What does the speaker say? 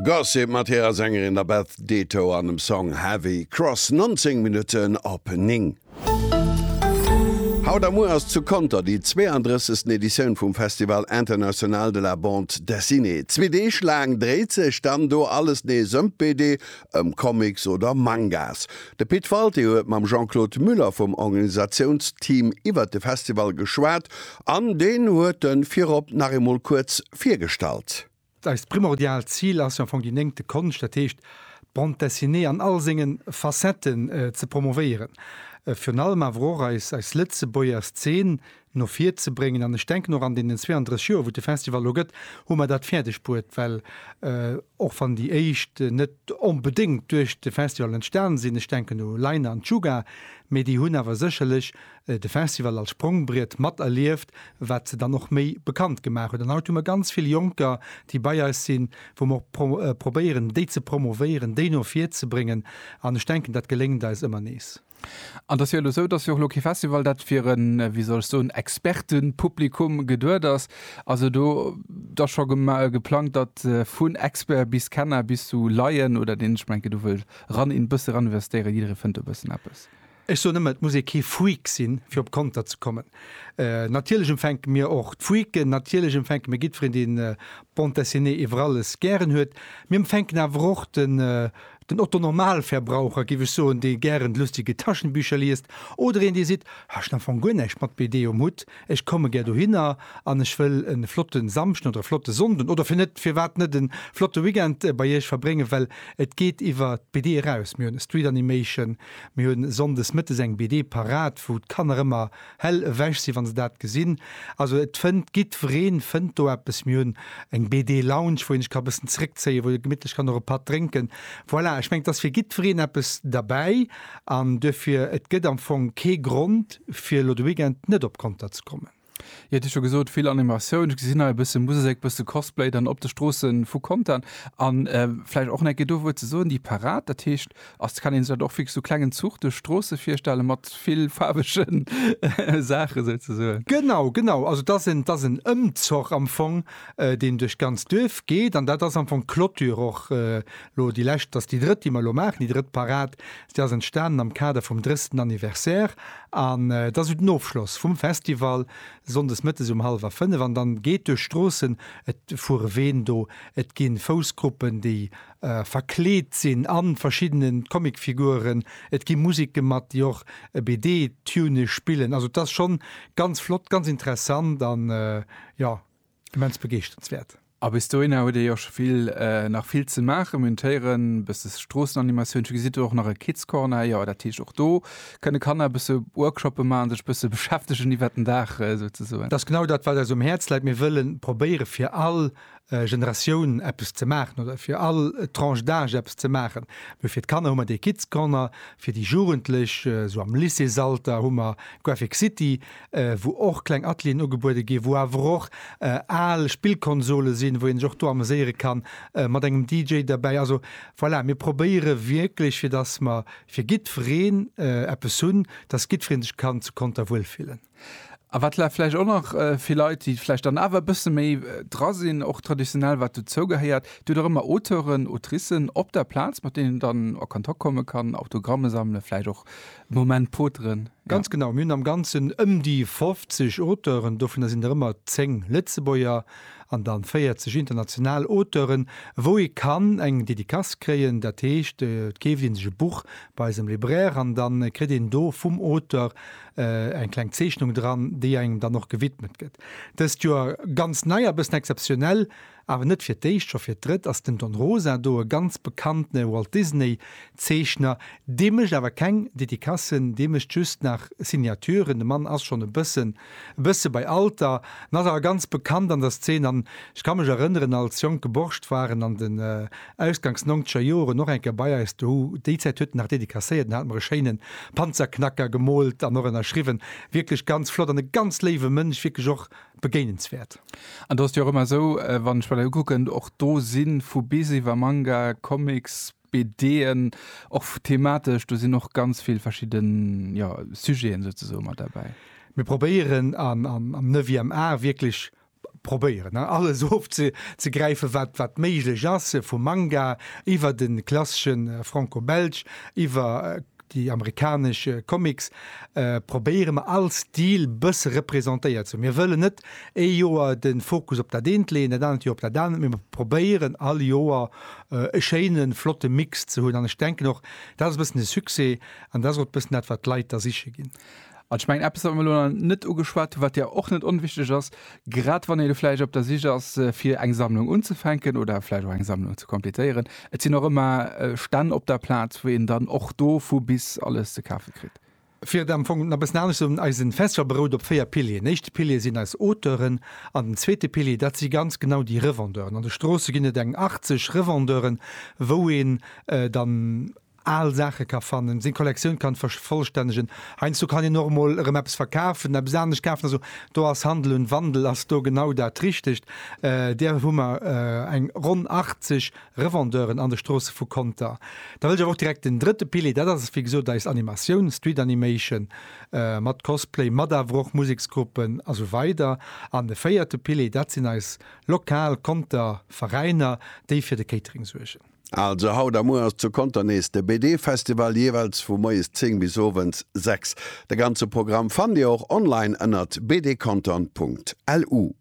Gossip mat hirer Sängerin der Beth Ditto an dem Song Heavy Cross, 19 Minutten op 9. Haut a muer ass zu Conter déi 32. Editioun vum Festival International de la Bande Dessinée. Zwee Deeg laang dréit sech dann do alles nees ëm d'BD, ëm Comics oder Mangas. De Pit Walté huet mam Jean-Claude Muller vum Organisatiounsteam iwwert de Festival geschwat an deen huet en virop nach eemol kuerz virgestallt. Eist primordiaalt Zil ass jo am Fong déi néngte Konscht, dat heescht d'Bande Dessinée an all senge Facetten ze promovéieren, virun allem awer och eis Lëtzebuerger Szen no vir ze bréngen. An ech denken och an deenen 32 Joer, wou et de Festival elo gëtt, hu mer dat fäerdeg bruet, well och wann déi éischt net onbedéngt duerch de Festival entstan sinn, ech denken u Leine an Chuga, mee déi hunn awer sécherlech de Festival als Sprongbriet mat erlieft, wat se dann och méi bekannt gemaach huet. An haut hu mer ganz vill Jonker, déi bei eis sinn, wou mer och probéieren, déi ze promovéieren, déi no vir ze bréngen. An ech denken, dat geléngt eis ëmmer nees. An et ass jo elo esou, dass jo och elo kee Festival, dat fir e, wéi soll ech soen, Expertepublikum geduet ass. Ass elo da scho geplangt, datt vun Expert bis Kenner bis zu Laien oder deen, ech mengen, do wëll ran, een bësse raninvestéieren, jidderee fënnt do e bëssen eppes? Ech soen ëmmer, et muss ee kee Freak sinn, fir op Konter ze kommen. Natierlech empfänke mir och d'Freaken, natierlech empfänke mir jiddferen, dee Bande Dessinée iwwer alles gären huet. Mir empfänken awer och den Otto-Normalverbraucher, giff ech soen, dee gären d'lustige Taschenbücher liest, oder een, dee seet, Ech hunn am Fong guer näischt mat BD um Hutt, ech komme gär dohinner an ech wëll e flotte Samschden oder e flotte Sonnden oder fir net, firwat net e flotte Weekend bei Iech verbréngen, well et geet iwwer d'BD eraus. Mir hunn e Street Animation, Mir hu sonndes mëttes eng BD parat, wou d'Kanner ëmmer hell ewech sinn, wa se dat gesinn. Also et fënnt, giddwereen fënnt do eppes. Mir hunn eng BD-Lounge, wou een sech ka bëssen zeréckzéien, wou ee gemittlech kann och e Patt drénken. Voilà, ech mengen, et ass fir giddwereen eppes derbäi an duerfir, et gëtt am Fong kee Grond, fir elo de Weekend net op Conter ze kommen. Jo et hu scho gesot vill Animatioun, ech gesinn hei e bësse Musek, e bësse Cosplay dann op de Stroosse vu Contern an vläicht och en Ecke dowuer ze soen, déi Parad dat heescht ass, kann een sech dat och wierklech sou klengen Zuch duerch d'Stroosse virstelle mat vill faarwegen Saache souzesoen? Genau, genau, also et ass en, et ass en Ëmzoch am Fong, deen duerch d'ganz Duerf geet an dat ass am Fong d'Clôture och elo déi lescht, dat ass déi drëtt déi mer elo maachen, déi drëtt Parad Si ass entstanen am Kader vum drëssten Anniversaire an et ass sou den Ofschloss vum Festival, Sonndes Mëttes um halwer 5 an dann geet duerch Stroossen, et fuere Ween do, et gi Foussgruppen déi verkleet sinn an verschiddenen Comicfiguren, et gi Musik gemat déi och e BD Tune spillen, also et ass schonn ganz flott, ganz interessant an jo Immens begeeschternswäert. A bis dohinner huet ee jo scho vill, nach vill ze maachen. Mir hunn d'Héieren, e bësse Stroossenanimatioun, gesitt do och nach e Kids Corner, jo dat heescht och do kënne Kanner e bësse Workshoppe maachen, sech e bësse beschäftegen iwwert den Dag souzesoen. Dat ass genau dat wat eis um Häerz läit. Mir wëlle probéiere fir all Generatioun eppes ze maachen oder fir all Tranche d'âge eppes ze maachen. Mee fir d'Kanner hu mer dee Kids Corner, fir déi Jugendlech esou am Lycéesalter hu mer Graphic City, wou och kleng Atelieren ugebuede ginn, wou awer och al Spillkonsole sinn, wou een sech och do ameséiere kann, mat engem DJ derbäi. Also voilà, mir probéiere wierklech, fir dass mer fir jiddwereen eppes hunn, dass jiddweree sech kann zu Conter wuel fillen. A wat vläicht och nach fir Leit, déi vläicht dann awer e bësse méi dra sinn, och traditionell, wat dozou gehéiert, Dir hutt och ëmmer Auteuren, Autricen op der Plaz, mat deenen een dann a Kontakt komme kann, Autogramme sammele vläicht och. Moment poteren, jo. Ganz genau, mir hunn am Ganzen ëm déi 50 Auteuren, dovunner sinn der ëmmer 10 Lëtzebuerger an dann 40 international Auteuren, wou ee kann eng Dedicace kréien. Dat heescht, et keeft ee sech e Buch bei eisem Libraire an da kritt een do vum Auteur eng kleng Zeechnung dran, déi engem dann och gewidmet gëtt. Dëst Joer ganz nei a bëssen exzeptionell, Awer net fir d'éischt, scho fir d'drëtt ass den Don Rosa do, e ganz bekanntene Walt Disney Zeechner. Dee mécht awer keng Dedicassen, dee mécht just nach Signaturen. De Mann ass schonn e bëssen e bësse bei Alter an ass awer ganz bekannt an der Szeen. An ech ka mech erënneren, als jonke Borscht war en an den ausgangs nongzeger Joren och eng Kéier bei eis dohu. Déi Zäit huet en nach dedicasséiert, en hat mer e schéine Panzerknacker gemoolt an och ënnerschriwwen. Wierklech ganz flott an e ganz léiwe Mënsch, wierklech och begéinenswäert. An do ass et jo och ëmmer esou, wann ech mer dat ukucken, och do si vu bis iwwer Manga, Comics, BDen, och thematesch, do sinn och ganz vill verschidde Sujeten souzesoe mat derbäi. Mir probéieren am neuvième art wierklech, probéieren, alles ofzegräifen, wat méiglech ass, vum Manga iwwer de klassesche Franco-Belge, iwwer Déi amerikanesch Comics probéiere mer all Stil bësse representéiert ze hunn. Mir wëllen net ee Joer de Fokus op dat eent leeën, dat anert Joer op dat anert, mee mer probéieren all Joer e schéine flotte Mix ze hunn. An ech denken och, dat ass e bëssen de Succès an dat ass och e bëssen dat, wat d'Leit da siche ginn. An ech mengen, eppes, wat mir elo nach net ugeschwat hunn, wat jo och net onwichtig ass, grad wann ee elo vläicht op der Sich ass, fir eng Sammlung unzufänken oder vläicht och eng Sammlung ze completéieren, Et sinn och ëmmer Stänn op der Plaz, wou een dann och do vu bis alles ze kafe kritt. Fir et am Fong nach e bëssen anescht ze soen, Eisen Festival berout op véier Pilieren. Den éischte Pilier sinn eis Auteuren an den zweete Pilier, dat si ganz genau déi Revendeuren. An de Stroosse ginn et eng 80 Revendeuren, wou een dann, al Saache ka fannen, seng Kollektioun kann vervollstännegen. Heiansdo kann een och emol erëm eppes verkafen, eppes anescht kafen. Also do ass Handel und Wandel ass do genau dat Richtegt. Där hu mer eng ronn 80 Revendeuren an de Stroosse vu Conter. Da wëll ech awer och direkt den drëtte Pilier, dat ass wéi gesot eis Animatioun, Street Animation, mat Cosplay, mat awer och Museksgruppen a sou weider. An de véierte Pilier, dat sinn eis lokal Conter Veräiner, déi fir de Catering suergen. Also haut a muer ass zu Conter nees de BD Festival, jeeweils vu moies 10 bis owends 6. De ganze Programm fannt Dir och online ënnert bdcontern.lu.